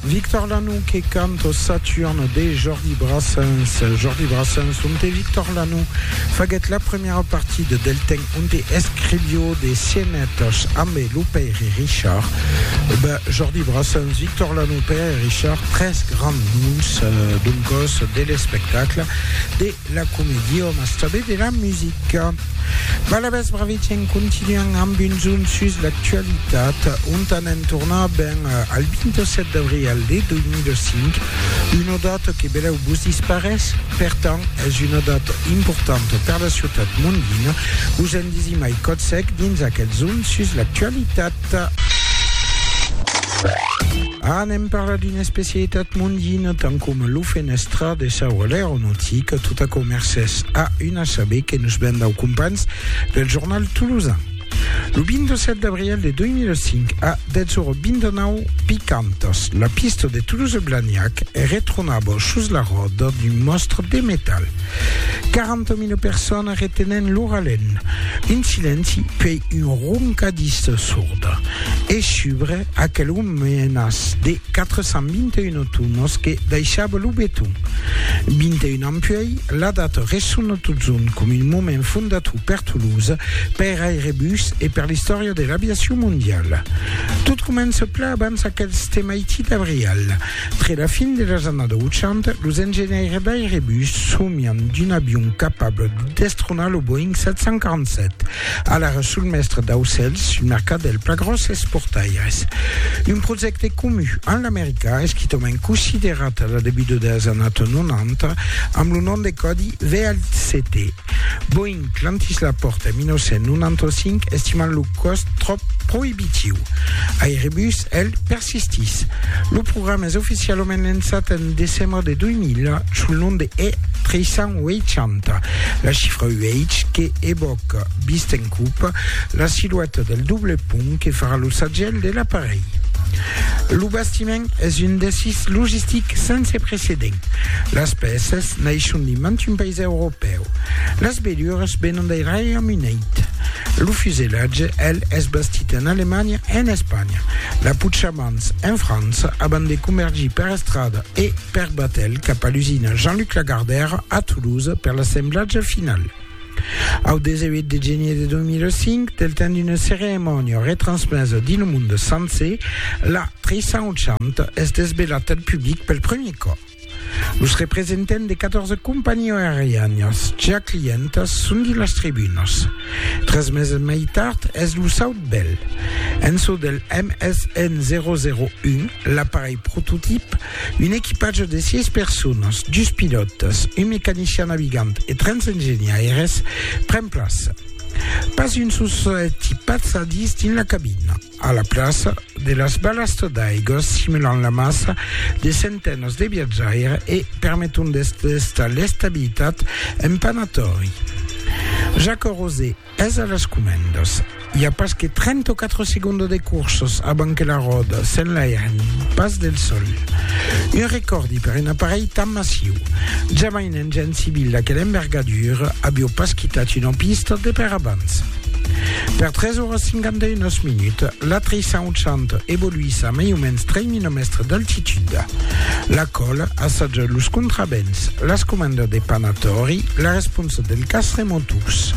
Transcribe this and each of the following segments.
Victor Lanoux que canta Saturne de Jordi Brassens. Jordi Brassens, on te Victor Lanoux faguèt la premièra partida del temps onde escrivió de scenetas ambe lo pèire Richard, ben, Jordi Brassens, Victor Lanoux, Pèire Richard, tres grands noms, doncòs, de l'espectacle, de la comedia, mas tanben de la musica. Balabèths Bravetièn continuam amb un zoom sus l'actualitat, ont anem tornar ben al 27 d'abrial de 2005, una data que belèu vos disparés? Per tant, es una data importanta per la ciutat mondina, us en disimai còth sec dins aquel zoom sus l'actualitat. Anem parlar d'una especialitat mondina tant coma lo fenèstra de sa ora l'aeronautica, tot aquò mercés a un assaber que nos ven dau companhs del jornal tolosan. Lo 27 d'abrièl de 2005 a 10:29 picantas, la pista de Toulouse-Blagnac retronava sus la ròda d'un mòstre de metal. 40.000 personas retenent lo ralent, un silenci puèi un roncadís sorda e subre Aquel òme menas de 421 tonos que daishava lo beton. 21 ans puèi, la data ressona totjorn com un moment fondator per Toulouse, per Airbus e per l'istòria de l'aviacion mondiala. Tot comença plan abans aquel stemaiti d'abrial. Tre la fin de las annadas 80, los engenhaires d'Airbus somian d'un avion capable de destronar lo Boeing 747. Alara sul mèstre d'aucèls, un mercat del pla gròsses portaires. Un projècte comu amb l'Americà, esquitament considerat a la debuta deles annato 90 amb lo nom de còdi VLCT. Boeing clantís la pòrta en 1995 estimant lo còst tròp proibitiu. Airbus, el, Sistis. Lo programa es oficialament lençat en decembre de 2000 sul nom de E 380. La chifra UH que evòca, vist en cup, la silueta del doble pont que farà lo sagèl de l'aparelh. Lo bastiment es un desís logistic sense precedent. Las pèças naishon de mantun país europèu. Las velures venon dei Reiaume Unit. Lo fusellatge, el, es bastit en Alemanha e en Espanha. La Puchamans, en França, abans de comergir per estrada e per batèl cap a l'usina Jean-Luc Lagardère a Toulouse per l'assemblatge final. Au 18 de genier de 2005, del temps d'una ceremònia retransmesa dins lo monde sencer, la 380 es desvelat al public pel premier còp. Los representants de 14 companhiás aerianas ja clientas son dins las tribunas. Tres meses mai tard es lo saut bèl. En çò del MSN 001, l'aparelh prototip, un equipatge de 6 personas, dus pilòtas, un mecanician navigant e 30 engenhaires, pren plaça. Pas un sol solet i pas sadís dins la cabina. A la plaça, de las balastras d'aiga simulan la massa de centenats de viatjaires e permeton d'estar l'estabilitat en panatori. Jacques Rosé es a las comendas. I a pas que 34 segondas de courses abans que la ròda s'enlairen pas del sòl. Un recòrdi per un aparelh tan massiu. Jamai un engèn civil d'aquela envergadura avió pas quitat una pista de per abans. Per 3 oras 59 minuts, la treisson chant evoluís a mai o mens 3.000 mètres d'altitud. La col assaja los contravents, las comandas de panatori, la responsa del cas remoturs.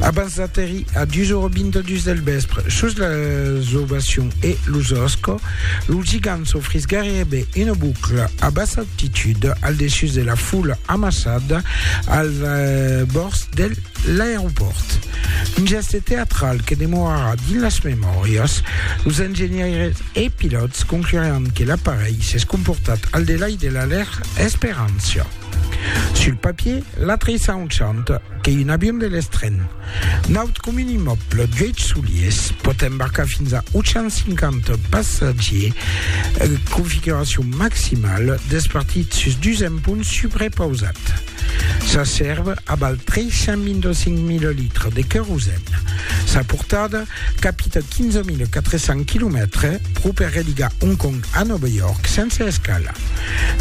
Abans d'aterrir a 2.22 del vespre sus la Zovacion e los Osco, lo gigant s'ofrís gairebe una boucla a bassa altitud al dessus de la foula amassada al bòrds del L'aeropòrt, un gèste teatral que demorarà dins las memòrias, los engenhaires e pilòts concluràn que l'aparelh s'es comportat al delai de la lèr esperància. Sul papier, l'atrissant chant que un avion de l'estren. Naut com un immòble d'uèch soliers, pòt embarcar fins a 850 passatgiers, configuracion maximala, despartit sus dus emponts suprepausats. Sa sèrva a val 325 mililitres de querosèn. Sa portada capita 15.400 quilomètres pro per religar Hong Kong a Nòva York sense escala.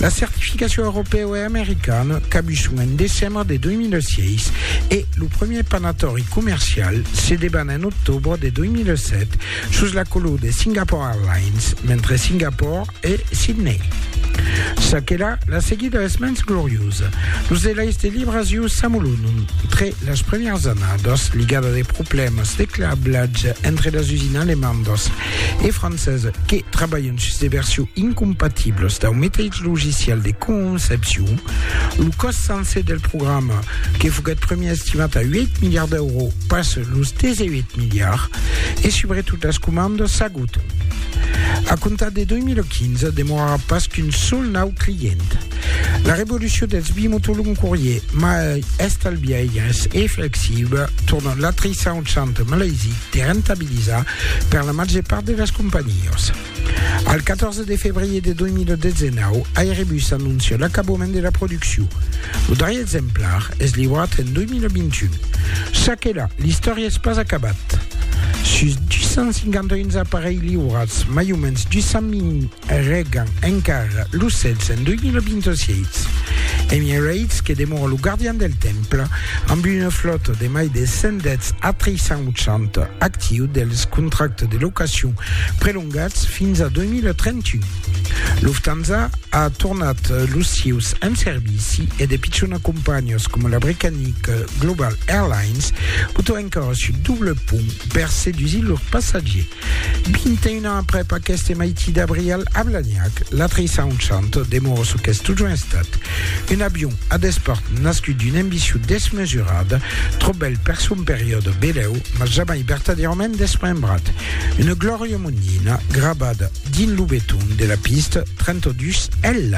La certificacion europèu e americana cabu son en decembre de 2006 e lo premier panatòri comercial se deban en octobre de 2007 sus la color de Singapore Airlines, mentre Singapore e Sidney. Ça que là, la seguida es mens gloriosa. Los elais de Libras iu s'amolonon tre las premièrs annadas, ligada de problèmas de clablatge entre las usines alemandas e francesa que trabalhan sus de versiu incompatibles dau meteitz logicial de concepcion. Lo còst sencer del programa, que foguèt premier estimat a 8 miliards d'euro, passa los 18 miliards e subretot las comandas Auto. A comptar de 2015, demorarà pas qu'un sol nau client. La revolucion dels bimotolongs courier mai estalbiaires e flexible torna l'atrissar un centre malaisic de rentabilizar per la màger part de las companhiás. Al 14 de febrier de 2019, Airbus anoncia l'acabament de la produccion. Lo darrier exemplar es liurat en 2021. Ça que la, l'istòria es pas acabat. Sus 251 aparelhs liurats, mai o mens 200.000 regan encara lo cèls en 2026. Emirates, que demora lo gardian del temple, amb una flòta de mai de 110 A380 actiu dels contractes de locacion prelongats fins a 2031. Lufthansa a tornat los sieus en servici e de pichona companhias coma la britannica Global Airlines botan encara sul doble pont per sedusir lors passatgiers. 21 ans aprèp aqueste maiti d'abrial a Blagnac, la 380 demora çò qu'es totjorn estat, un avion a despart nascut d'una ambicion desmesurada, tròp bèl per son periòde belèu, mas jamai vertadièrament desmembrat. Una glòria monina grabada dins lo beton de la pista 32 L.